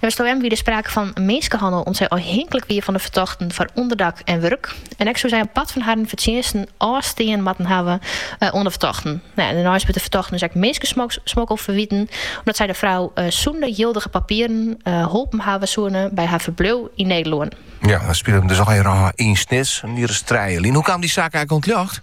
Neffens it OM wie der sprake fan minskehannel om't sy ôfhinklik wie fan de fertochten foar ûnderdak en wurk. En ek soe sy in part fan harren fertsjinsten ôfstean moatten hawwe oan de fertochten. Dêrneist wurdt de fertochten dus ek minskesmokkel ferwiten, omdat sy de frou sûnder jildige papieren holpen hawwe soene by har ferbliuw yn Nederlân. Ja, it spilet him dus allegearre yn Snits, in jier as trije lyn. Hoe kaam dy saak eigenlijk oan it ljocht?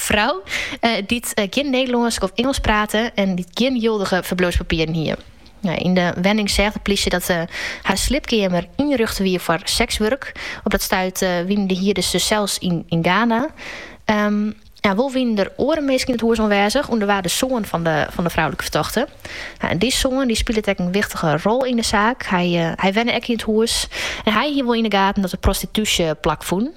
Frou, dy't gjin Nederlânsk of Ingelsk prate en dy't gjin jildige ferbliuwspapieren hie. Yn de wenning seach de plysje dat har sliepkeamer ynrjochte wie foar sekswurk. Op dat stuit wiene de hierders dus sels yn Ghana. Wol wienen der oare minsken yn it hûs oanwêzich, ûnder wa de soan fan de froulike fertochte. Dy soan dy spilet ek in wichtige rol yn de saak. Hy wenne ek yn it hûs en hy hie wol yn de gaten dat der prostitúsje plakfûn.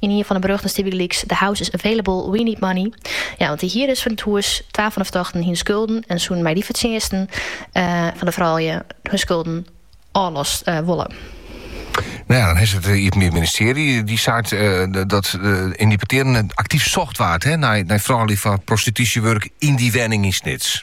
Yn ien fan 'e berjochten stie bygelyks, The house is available, we need money. Ja, want de hierders fan it hûs, twa fan 'e fertochten, hiene skulden en soene mei dy fertsjinsten fan 'e froulju hun skulden ôflost wolle. No ja, dan is it eh, Iepenbier Ministearje. Dy seit eh, dat eh, yn dy petearen aktyf socht waard hè, nei, nei froulju foar prostitúsjewurk yn dy wenning yn Snits.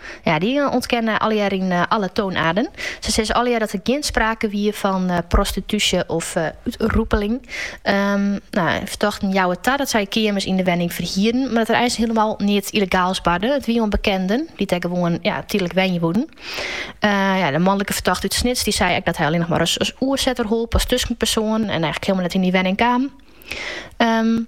Ja, dy ûntkenne allegear yn alle toonaarden. Se sizze allegear dat der gjin sprake wie fan prostitúsje of ronseling. Um, nou, fertochten jouwe ta dat sy keamers yn de wenning ferhieren, mar dat der eins hielemaal neat illegaals barde. It wie oan bekenden, dy't dêr gewoan ja, tydlik wenje woenen. Uh, ja, de manlike fertochte út Snits dy sei ek dat hy allinne noch mar as, as oersetter holp, als tuskenpersoon en eigenlijk hielemaal net yn dy wenning kaam. Um,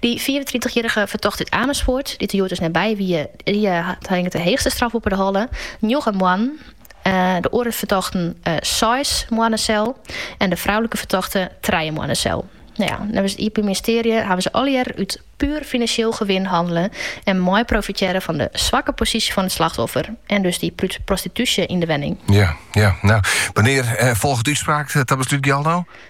Dy fiifentritichjierrige fertochte út Amersfoart, dy't der hjoed dus net by wie, dy hat, hinget de heechste straf boppe de holle, njoggen moannen. De oare fertochten seis moanne sel en de froulike fertochte trije moanne sel. Neffens it Iepenbier Ministearje hawwe se allegearre út puer finansjeel gewin hannele en meiprofitearre fan de swakke posysje fan it slachtoffer en dus dy prostitúsje yn de wenning. Wannear folget de útspraak ta beslút, Jildou?